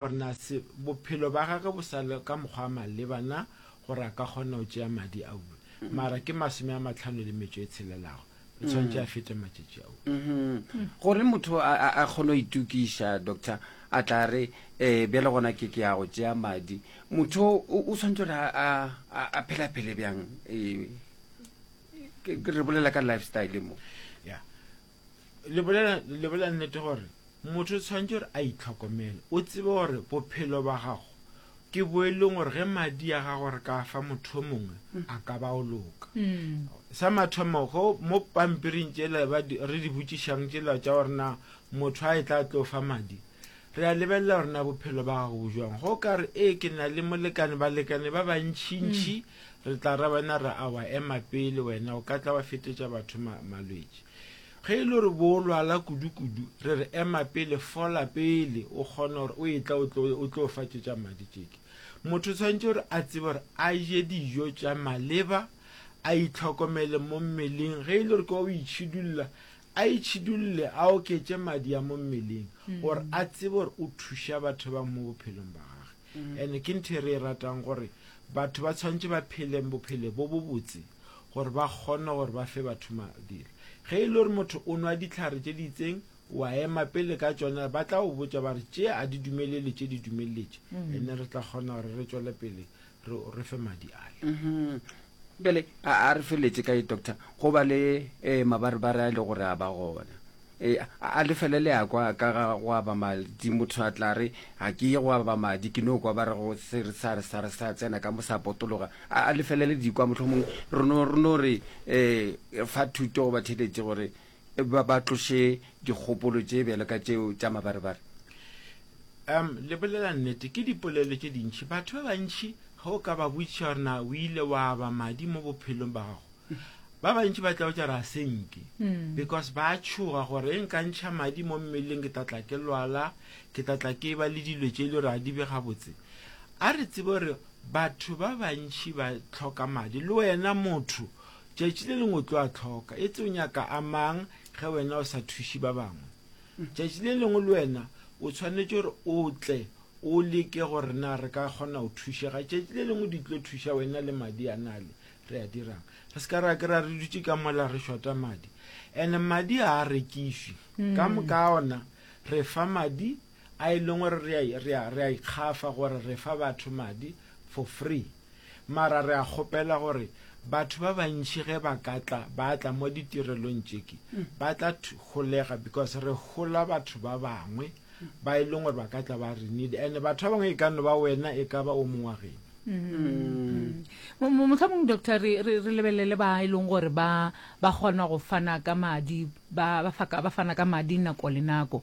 Barnus, bophelo ba gage bo sa le ka mokgwa wa maleba na gore a ka kgona go tšea madi a uwe. Mara ke masome a matlhano le metšo e tshelelago. Re tshwanetse a fete matšatši a uwe. Gore motho a a kgone go itokiša, doctor a tla re, ee, bjale gona ke ke ya go tšea madi. Motho o tshwanetse gore a a phele a phele bjang? Re bolela ka lifestyle mo. Yeah. le bolela le bolela nnete gore motho o tshwanetse gore a itlhokomele o tsebe gore bophelo ba gago ke bo e leng gore ge madi a gago re ka fa motho o mongwe mm. a ka ba o loka mm. sa mathomo go mo pampiring tsela re di botšišang tsela tša gore na motho a e tla tlo fa madi re a lebelela gore na bophelo ba gago bo jwang go ka re ee ke na le molekane balekane ba bantšhintšhi mm. Re tla ra wena ra a wa ema pele wena, o ka tla wa fetetša batho ma, malwetši. Ge e le gore bo o lwala kudu-kudu, re re ema pele, fola pele, o kgone gore o etla o tlo, o tlo fa tše tša madi tšeke. Motho tshwanetše gore a tsebe gore a je dijo tša maleba, a itlhokomele mo mmeleng, ge e le gore ke wa o itšhidulla, a itšhidulle, a oketše madi a mo mmeleng, gore a tsebe gore o thuša batho bang mo bophelong ba gage. And ke ntho e re e ratang gore batho ba tshwanetse ba phele bophele bo bo botse gore ba kgone gore ba fe batho madira. Ge e le gore motho o nwa ditlhare tše di itseng, wa ema pele ka tšona, ba tla go botša ba re tše a di dumelele tše di dumeleletše, and re tla kgona gore re tšwele pele re re fe madi ale. Bjale a, a re feletše ka ye, Doctor, go ba le eh, mabarebare a e le gore a ba gona. Eh, a, a lefele le a kwa ka ga go aba madi. Motho a tla re, Ga ke ye go aba madi, ke no kwa ba re go se re sa, re sa, re sa tsena ka mo sa potologa. A, a lefele le di kwa. Mohlomongwe re no, re no re eh, fa thuto goba theeletše gore Ba ba tloše dikgopolo tše bjalo ka tšeo tša mabarebare. Um, le bolela nnete, ke dipolelo tše dintši. Batho ba bantši ge o ka ba botšiša gore na o ile wa ba madi mo bophelong ba gago, ba bantši ba tla o tšara a senke hmm. because ba tšhoga gore e nka ntšha madi mo mmeleng ke tatla ke lwala ke tatla ke ba le dilo tše e le gore a di be gabotse a re tsebe gore batho ba bantši ba tlhoka madi le wena motho Tšatši le lengwe o tlo a tlhoka. Etse o nyaka a mang ge wena o sa thuši ba bangwe? Tšatši le lengwe le wena o tshwanetše gore o tle o leke gore na re ka kgona go thušega. Tšatši le lengwe di tlo thuša wena le madi a na le re a dirang. Re se ka ra kry-a re dutše ka mola re šota madi. And madi ga a rekišwi. Ka moka ona re fa madi A e leng gore re a, re a, re a ikgafa gore re fa batho madi for free. Mara re a kgopela gore batho ba bantši ge ba ka tla, ba tla mo ditirelong tšeki, ba tla thu, holega because re hola batho ba bangwe ba e leng gore ba ka tla ba re need. And batho ba bangwe e ka no ba wena, e ka ba o mongwe wa geno. Mo- mo- Mohlomong, Doctor, re, re, re lebelele ba e leng gore ba, ba kgona go fana ka madi, ba, ba, fa ka, ba fana ka madi nako le nako.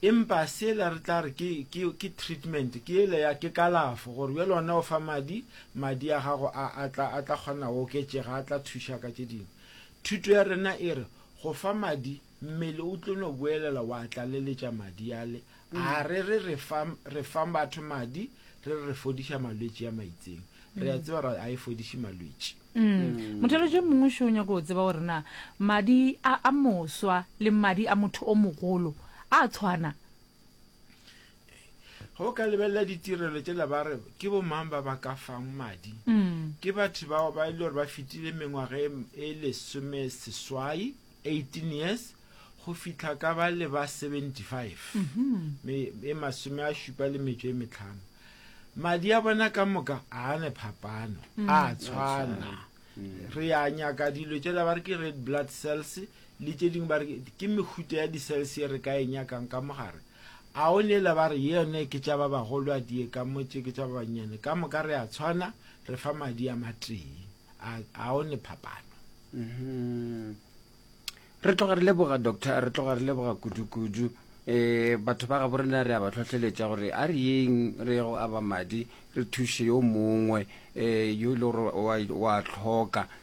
Empa sela re tla re ke, ke, ke treatment, ke yela ya, ke kalafo, gore bjale ona o fa madi, madi a gago a, a tla, a tla kgona go oketšega, a tla thuša ka tše dingwe. Thuto ya rena e re, go fa madi, mmele o tlo no boelela wa tlaleletša madi ale. A re re re fa, re fa batho madi, re re re fodiša malwetši a maitseng. Re a tseba gore a e fodiše malwetši. Mothalotši o mongwe šo o nyaka go tseba gore na madi a a moswa le madi a motho o mogolo a a tshwana. Ge o ka lebelela ditirelo tšela ba re ke bomang ba ba ka fang madi. Ke batho bao ba e le gore ba fetile mengwaga e lesomeseswai. 18 years go fihla ka ba le ba 75 me e masome a šupa le metšo e metlhano madi a bona ka moka a ne phapano a tshwana re ya nyaka dilo tšela ba re ke red blood cells le tše dingwe ba re ke- ke mehuta ya di-cells ye re ka e nyakang ka mogare a o neela ba re ye yone ke tša ba bagolo a die ka motse ke tša ba bannyane ka moka re a tshwana re fa madi a matee a a o ne phapano Mm-hmm. Re tloga re leboga doctor, re tloga re leboga kudu-kudu. Eh batho ba ga bo rena re a ba tlhotlheletša gore a re yeng re go aba madi re thushe yo mongwe eh yo e le gore wa tlhoka